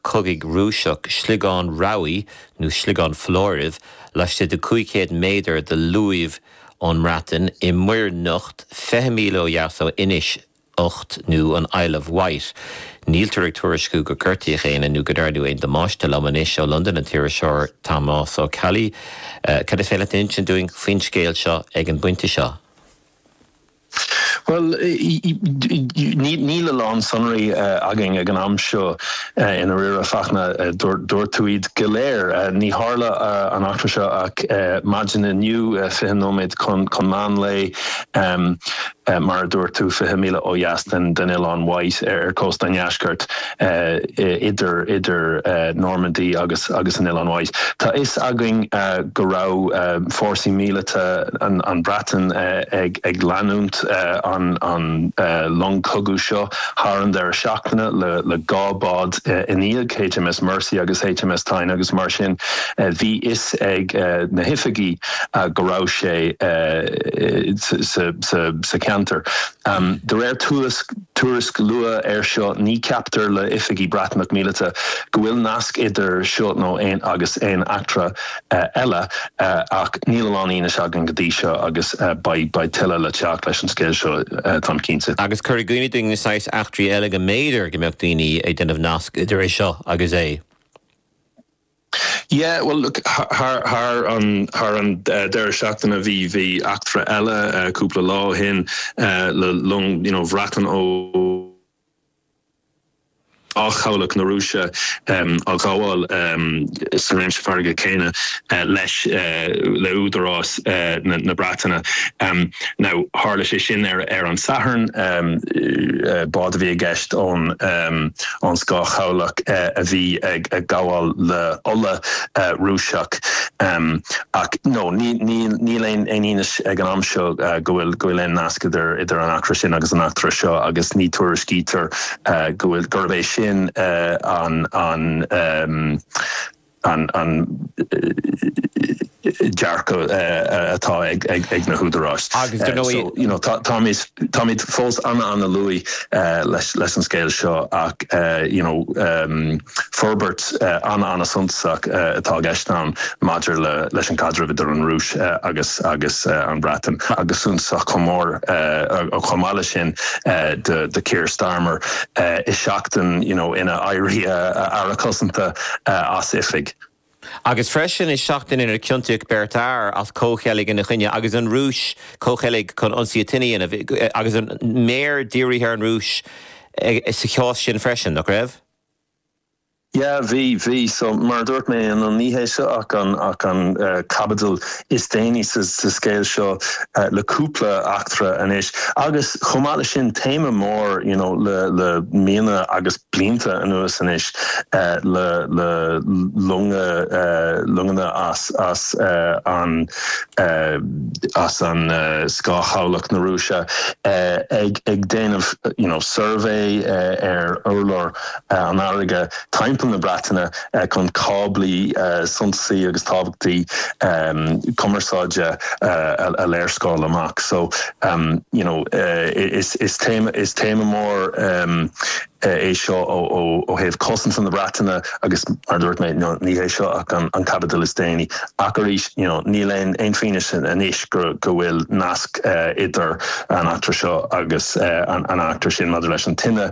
cogaidh Rúiseach sliogán rabhaidh nó sliogán foláirimh, laistigh de 500 méadar de luamh ón mBreatain, i Muir nIocht, 20 míle ó dheas ó Inis nIocht nó an Isle of Wight. Níltear ag tuairisciú gur gortaíodh éinne nó go ndearnadh aon damáiste lom anois ó Londain an t-iriseoir Tomás Ó Ceallaigh. Cad is féidir leat a insint dúinn faoin scéal seo ag an bpointe seo? Bhuel, níl a lán sonraí againn ag an am seo, i ndáiríre, Fachtna, dúirt tú iad go léir. Ní tharla an eachtra seo ach maidin inniu, fiche nóiméad chun meán lae, mar a dúirt tú, fiche míle ó dheas den Oileán Wight ar chósta an deiscirt. idir Normandy agus an Oileán Wight. Tá fhios againn go raibh fórsaí míleata an Bhreatain ag leanúint an long cogadh seo thar an deireadh seachtaine le dhá bád ina dhiaidh, HMS Mersey agus HMS Tyne, agus mar sin bhí fhios ag na hoifigí go raibh sé sa cheantar. De réir tuairisc, Tuairisc luath air seo, ní ceaptar le oifigí Breatnach míleata go bhfuil nasc idir seo nó aon agus aon eachtra eile, ach níl a lán fianaise againn go dtí seo agus beidh beidh tuilleadh le teacht leis an scéal seo táim cinnte. Agus cuir i gcuimhne dúinn na saghas eachtraí eile go mb'fhéidir go mbeadh daoine ag déanamh nasc idir é seo agus é. Yeah, bhuel, thar thar an deireadh seachtaine bhí eachtra eile cúpla lá ó shin le long, you know, Breatain ó scáthchabhlach na Rúise á ghabháil sa réimse farraige céanna leis, le údarás na Breataine. Now, tharla sé sin ar an Satharn, bád a bhí i gceist ón, ón scáthchabhlach a bhí ag gabháil le ola Rúiseach ach now, níl aon fhianaise ag an am seo go bhfuil aon nasc idir an eachtra sin agus an eachtra seo agus ní tuairiscítear gurb é sin an an dearcadh atá ag na húdaráis. Agus dar ndóigh. Táimid fós an-an-luath leis an scéal seo ach forbairt an-an-suntasach atá i gceist ann maidir leis an gcaidreamh idir an Rúis agus an Bhreatain agus suntasach chomh mór chomh maith leis sin do Keir Starmer i seachtain inar éirigh Aire Cosanta. as oifig. Agus freisin, is seachtain inar ciontaíodh beirt fhear as comhcheilg ina choinne agus an Rúis, comhcheilg chun ionsaí a dhéanamh, agus an méar dírithe ar an Rúis sa chás sin freisin, nach raibh? Yeah, bhí, bhí. So, mar a dúirt mé, an ní hé seo ach an caibidil is déanaí sa scéal seo le cúpla eachtra anois agus chomh maith le sin téama mór you know le le míonna agus blianta anuas anois le le longa longanna as as an as an scáthchabhlach na Rúise ag ag déanamh you know survey ar urlár an fharraige timpeall na Breataine chun cáblaí suntasaí agus tábhachtaí cumarsáide a léarscáil amach. So, you know, is téama, is téama mór é seo ó thaobh cosanta na Breataine agus, mar a dúirt mé, ní hé seo ach an caibidil is déanaí. Ach arís, you know, níl aon fianaise anois go bhfuil nasc idir an eachtra seo agus an eachtra sin maidir leis an tine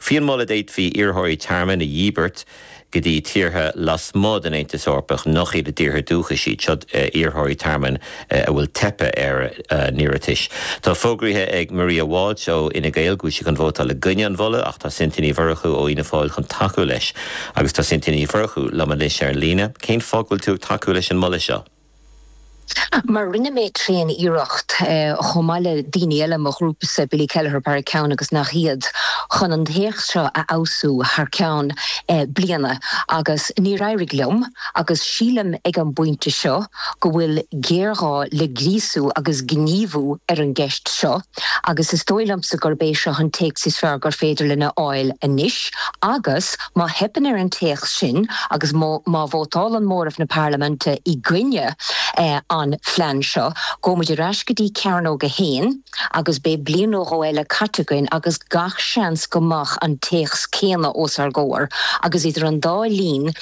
Faoin moladh d'fhéadfaí iarrthóirí tearmainn a dhíbirt go dtí tíortha lasmuigh den Aontas Eorpach nach iad a dtíortha dúchais iad. Seo iarrthóirí tearmainn a bhfuil teipthe ar a n-iarratais. Tá fógraíthe ag Maria Walsh ó Fhine Gael go bhfuil sí chun vótáil i gcoinne an mholadh ach tá Cynthia Ní Mhurchú ó Fhianna Fáil chun tacú leis. Agus tá Cynthia Ní Mhurchú liom anois ar an líne. Cén fáth go bhfuil tú ag tacú leis an moladh seo? Mar rinne mé tréan iarracht, chomh maith le daoine eile i mo ghrúpasa, Billy Kelleher Barry Cowen agus nach iad, chun an téacs seo a fheabhsú thar ceann bliana agus níor éirigh liom agus sílim ag an bpointe seo go bhfuil géarghá le gríosú agus gníomhú ar an gceist seo agus is dóigh liomsa gurb é seo an téacs is fearr gur féidir linn a fháil anois agus Má theipeann ar an téacs sin agus má vótálann móramh na Parlaiminte i gcoinne an phlean seo, gabhfaidh muid ar ais go dtí Cearnóg 1 agus beidh bliain nó dhó eile caite againn agus gach seans go mbeadh an téacs céanna os ár gcomhair agus idir an dá linn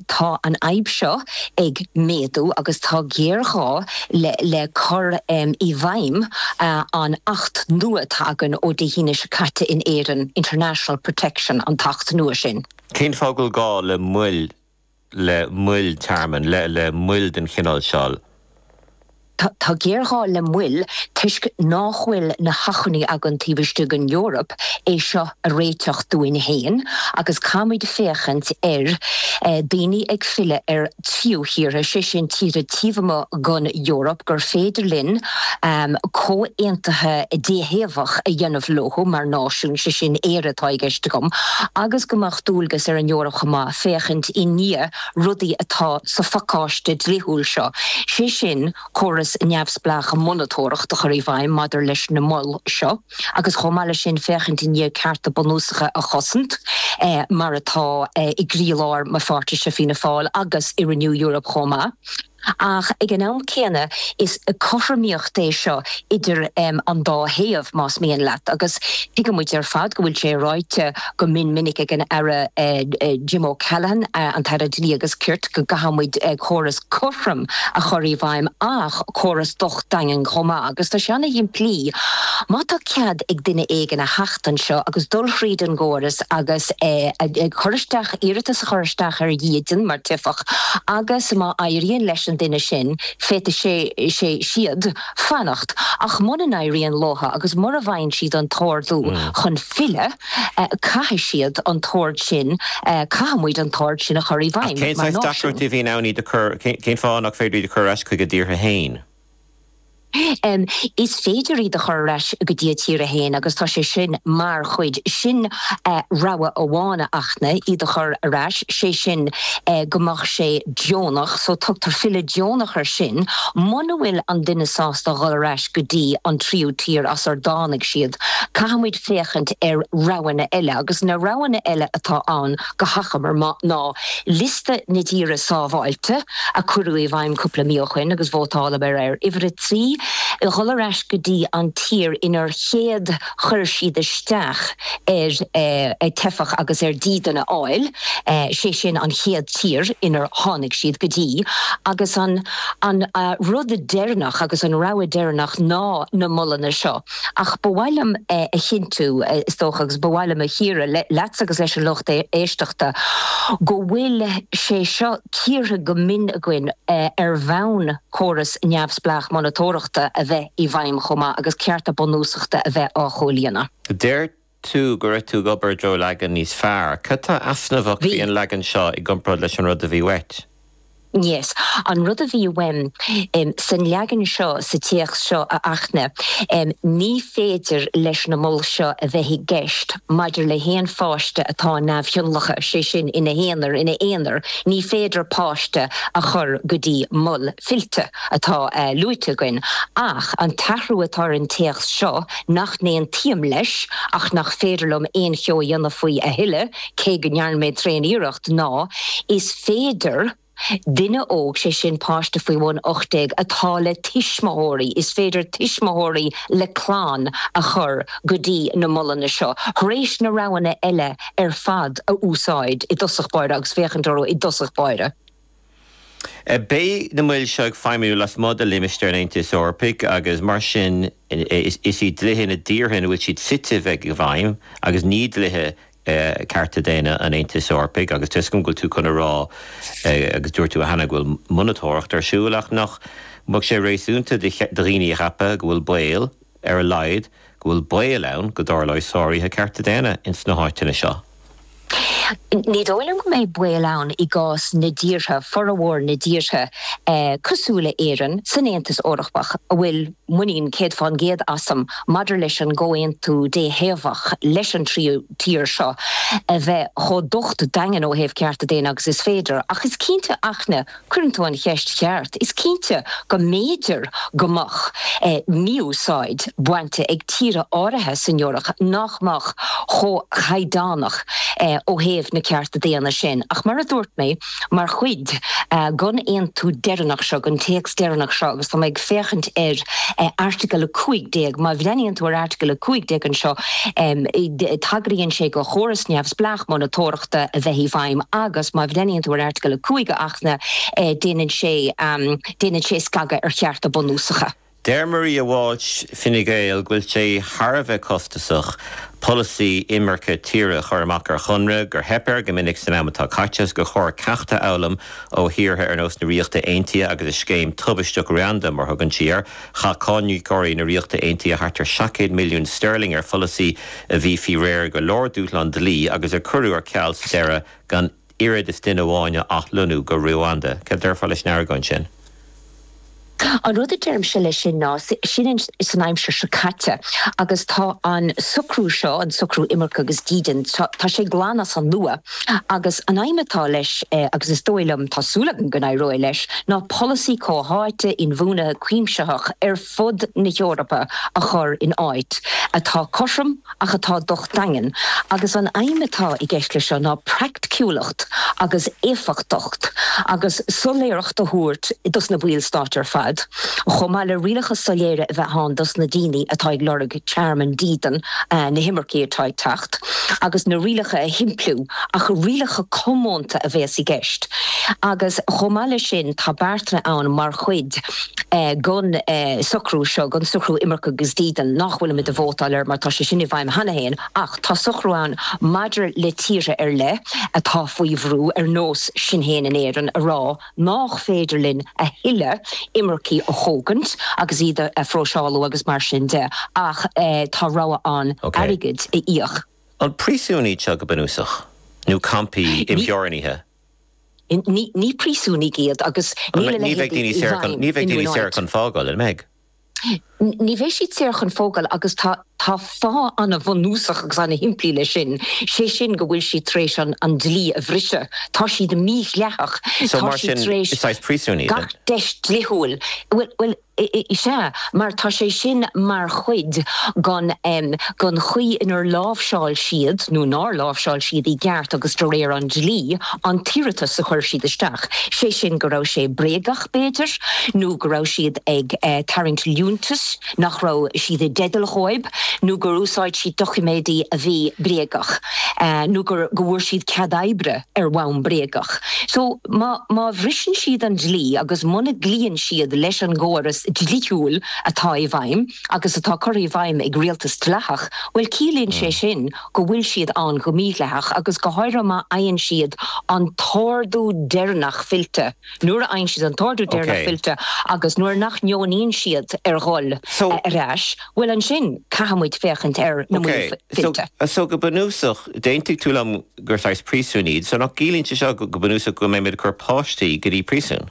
tá an fhadhb seo ag méadú agus tá géarghá le cur i bhfeidhm an Acht nua atá againn ó Dé hAoine seo caite in Éirinn, International Protection an tAcht nua sin. Cén fáth go bhfuil gá le mol, le moil tearmainn, le le moil den chineál seo? Tá géarghá le moil toisc nach bhfuil na hacmhainní againn taobh istigh den Eoraip é seo a réiteach dúinn féin agus caithfimid féachaint ar daoine ag filleadh ar thríú thíortha, sé sin tíortha taobh amuigh den Eoraip gur féidir linn comhaontuithe déthaobhach a dhéanamh leo mar náisiún, sé sin Éire atá i gceist agam, agus go mbeadh dualgas ar an Eoraip chomh maith féachaint i ndiaidh. rudaí atá sa phacáiste dlíthiúil seo, sé sin, córais neamhspleácha monatóireachta a chur i bhfeidhm maidir leis na moil seo agus, chomh maith leis sin, féachaint i ndiaidh cearta bunúsacha a chosaint, mar atá i gcroílár mo pháirtise Fianna Fáil agus i Renew Europe chomh maith. Ach ag an am céanna, is cothromaíocht é seo idir an dá thaobh, más mian leat, agus tuigeann muid ar fad go bhfuil sé ráite go mion minic ag an Aire Jim O'Callaghan, an tAire Dlí agus Cirt, go gcaithfidh muid córas cothrom a chur i bhfeidhm, ach córas docht daingean chomh maith. Agus tá sé ana-shimplí. Má tá cead ag duine éigin a theacht anseo agus dul thríd an gcóras agus cur isteach, iarratas a chur isteach ar dhídean mar teifeach agus má éiríonn leis an duine sin, féadfaidh sé, sí, siad fanacht. Ach muna n-éiríonn leo agus mura bhfaigheann siad an t-ordú chun filleadh, caithfidh siad an t-ord sin, caithfidh muid an t-ord sin a chur i bhfeidhm mar náisiún. Ach cén saghas deacrachtaí a bhíonn ann iad a chur, cén fáth nach féidir iad a chur ar ais chuig a dtíortha féin? Is féidir iad a chur ar ais go dtí a dtíortha féin agus tá sé sin mar chuid sin rogha amháin acu ná iad a chur ar ais, sé sin go mbeadh sé deonach, so tugtar filleadh deonach air sin, muna bhfuil an duine sásta dhul ar ais go dtí an tríú tír as ar dtáinig siad, caithfidh muid féachaint ar roghanna eile agus na roghanna eile atá ann, go hachomair ná liosta na dtíortha 'sábháilte' a cuireadh i bhfeidhm cúpla mí ó shin agus vótálamar air, uimhir a trí, dhul ar ais go dtí an tír inar chéad chuir siad isteach ar teifeach agus ar dhídean a fháil, sé sin an chéad tír inar tháinig siad go dtí, agus an rud deireanach agus an rogha deireanach ná na molanna seo. Ach ba mhaith liom a chinntiú, is dócha, agus ba mhaith liom a chíoradh leatsa agus leis an lucht éisteachta, go bhfuil sé seo cíortha go mion againn ar bhonn córas neamhspleách monatóireachta a bheith i bhfeidhm chomh maith agus cearta bunúsachta a bheith á chomhlíonadh. Deir tú go raibh tú ag obair i dtreo leagan níos fearr. Cad tá easnamhach Bhí. faoi an leagan seo i gcomparáid leis an rud a bhí uait? Yes. An rud a bhí uaim em san leagan seo, sa téacs seo a Fhachtna, em ní féidir leis na mol seo a bheith i gceist maidir le haon pháiste atá neamhthionlactha, sé sin, ina haonar, ina aonar, ní féidir páiste a chur go dtí mol fillte atá eh luaite againn. Ach an t-athrú atá ar an téacs seo, nach n-aontaím leis ach nach féidir liom aon cheo a dhéanamh faoi a thuilleadh, cé go ndearna mé tréan-iarracht, ná, is féidir, duine óg, sé sin páiste faoi bhun 18, atá le tuismitheoirí, is féidir tuismitheoirí le clann a chur go dtí na molanna seo, thar éis na roghanna eile ar fad a úsáid i dtosach báire agus féachaint orthu i dtosach báire. Beidh na moil seo ag feidhmiú lasmuigh de limistéar an Aontais Eorpaigh agus mar sin is iad dlíthe na dtíortha ina bhfuil siad suite a bheidh i bhfeidhm agus ní dlíthe cearta daonna an Aontais Eorpaigh agus tá 'fhios agam go bhfuil tú chun a rá agus dúirt tú cheana go bhfuil monatóireacht ar siúl ach nach mbeadh sé réasúnta do dhaoine a cheapadh go bhfuil baol ar a laghad, go bhfuil baol ann go dtarlóidh sáruithe cearta daonna ins na háiteanna seo. Ní dóigh liom go mbeidh baol ann i gcás na dtíortha, formhór na dtíortha cosúil le hÉirinn, san Aontas Eorpach a bhfuil muinín céad fán gcéad asam maidir leis an gcomhaontú déthaobhach leis an tríú tír seo a bheith chomh docht daingean ó thaobh cearta daonna agus is féidir. Ach is cinnte a Fhachtna. Cuireann tú an cheist cheart. Is cinnte go mb'fhéidir go mbeadh mí-úsáid bainte ag tíortha áirithe san Eoraip nach mbeadh chomh caighdeánach ó thaobh na cearta daonna sin. Ach mar a dúirt mé, mar chuid den aontú deireanach seo, den téacs deireanach seo, agus tá mé ag féachaint ar Airteagal 15, má bhreathnaíonn tú ar Airteagal 15 anseo, tagraíonn sé do chóras neamhspleách monatóireachta. Achta a bheith i bhfeidhm agus, má bhreathnaíonn tú ar Airteagal 5 a Fhachtna, déanann sé, déanann sé scagadh ar chearta bunúsacha. Deir Maria Walsh, Fine Gael, go bhfuil sé thar a bheith costasach polasaí imirce tíre a chur amach ar chonradh, gur theip air go minic san am atá caite agus gur chóir ceacht a fhoghlaim ó thíortha ar nós na Ríochta Aontaithe agus a scéim tubaisteach Ruanda, mar thugann sí air. Chaith cáiníocóirí na Ríochta Aontaithe thart ar seacht gcéad milliún sterling ar pholasaí a bhí faoi réir go leor dúshlán dlí agus a cuireadh ar ceal sa deireadh gan oiread is duine amháin a athlonnú go Ruanda. Céard a déarfá leis an argóint sin? An rud a deirimse leis sin ná, sin san aimsir seo caite agus tá an socrú seo, an socrú imirce agus dídean, tá sé glan as an nua. Agus an aidhm atá leis, agus is dóigh liom, tá súil agam go n-éireoidh leis, ná polasaí chomhtháite, inbhuanaithe, cuimsitheach ar fud na hEorpa a chur in áit, atá cothrom ach atá docht daingean. Agus an aidhm atá i gceist leis seo ná praiticiúlacht agus éifeachtacht agus soiléireacht a thabhairt dos na baill stáit ar fad, chomh maith le rialacha soiléire a bheith ann dos na daoine atá ag lorg tearmann dídean na himircigh atá ag teacht agus na rialacha a shimpliú ach rialacha comónta a bhéas i gceist agus chomh maith leis sin tá beartanna ann mar chuid den socrú seo, den socrú imirce agus dídean nach bhfuil muid ag vótáil air mar tá sé sin i bhfeidhm cheana féin ach tá socrú ann maidir le tíortha ar leith atá faoi bhrú ar nós sinn féin in Éirinn a rá nach féidir linn a thuilleadh imircigh a thógaint agus iad a phróiseálú agus mar sin de ach tá rogha ann airgid a íoc. An príosún iad seo go bunúsach? Nó campaí imtheorannaithe? Ní príosúin iad agus níl a leithéid i bhfeidhm in aon áit. Ní bheidh daoine saor chun fágáil, an mbeidh? Ní bheidh siad saor chun fágáil agus tá fáth an-bhunúsach agus an-shimplí leis sin, sé sin go bhfuil siad tar éis an dlí a bhriseadh, tá siad mídhleathach, tá siad tar éis gach deis dlithiúil, bhuel, sea, mar tá sé sin mar chuid den chaoi inar láimhseáil siad, nó nár láimhseáil siad i gceart agus de réir an dlí, an t-iarratas a chuir siad isteach, sé sin go raibh sé bréagach. b'fhéidir, nó go raibh siad ag tarraingt liúntais nach raibh siad i dteideal dhóibh, nó gur úsáid siad doiciméidí a bhí bréagach, nó go bhfuair siad cead oibre ar bhonn bréagach. So, má bhriseann siad an dlí agus muna gcloíonn siad leis an gcóras dlithiúil atá i bhfeidhm, agus atá curtha i bhfeidhm ag rialtas dleathach, bhuel, ciallaíonn sé sin go bhfuil siad ann go mídhleathach, agus go háirithe má fhaigheann siad an t-ordú deireanach fillte. Nuair a fhaigheann siad an t-ordú deireanach fillte agus nuair nach ndeonaíonn siad ar dhul ar ais, bhuel, ansin caithfidh muid féachaint ar na moil fillte. So, go bunúsach, d'aontaigh tú liom gur saghas príosúin iad. So nach gciallaíonn sé seo go bunúsach go mbeimid ag cur páistí go dtí príosún?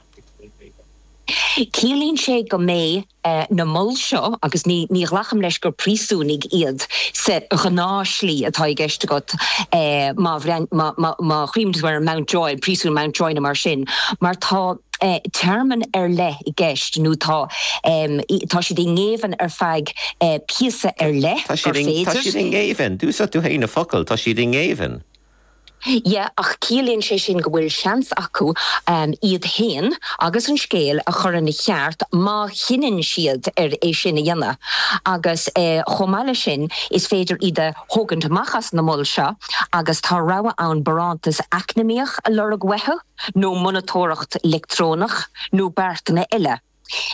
Ciallaíonn sé go mbeidh eh, na moil seo, agus ní, ní ghlacaim leis gur príosúnaigh iad sa ghnáthshlí atá i gceist agat, eh, má bhreathn, má, má, má chuimhnigh tú ar Mountjoy, príosún Mountjoy nó mar sin, mar tá, eh, téarma ar leith i gceist nó tá, em, i, tá siad i ngéibheann ar feadh, eh, píosa ar leith Tá siad gur i, tá féidir. siad i ngéibheann, d'úsáid tú fhéin an focal, tá siad i ngéibheann. Yeah, ach ciallaíonn sé sin go bhfuil seans acu iad féin agus an scéal a chur ina cheart má chinneann siad ar é sin a dhéanamh. Agus chomh maith leis sin, is féidir iad a thógaint amach as na moil seo agus tá rogha ann barántas eacnamaíoch a lorg uathu, nó monatóireacht leictreonach, nó beartanna eile.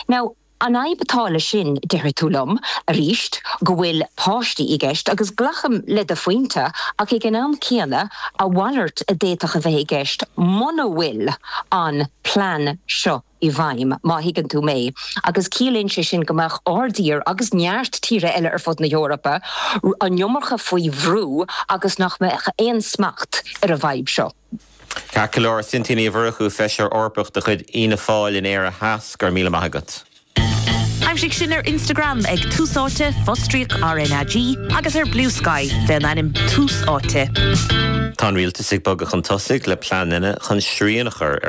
Now, an fhadhb atá leis sin, déarfaidh tú liom, aríst, go bhfuil páistí i gceist, agus glacaim le do phointe, ach ag an am céanna, a mhalairt a d'fhéadfadh a bheith i gceist muna bhfuil an plean seo i bhfeidhm, má thuigeann tú mé, agus ciallaíonn sé sin go mbeadh ár dtír, agus neart tíortha eile ar fud na hEorpa, an iomarca faoi bhrú agus nach mbeadh aon smacht ar an bhfadhb seo. Ceart go leor, Cynthia Ní Mhurchú, Feisire Eorpach de chuid Fhianna Fáil in Éire Theas, go raibh míle maith agat. Aimsigh sinn ar Instagram ag Tús Áite, fostríoc R na G, agus ar Bluesky, faoin ainm Tús Áite. Tá an Rialtas ag bogadh chun tosaigh le pleananna chun srian a chur ar.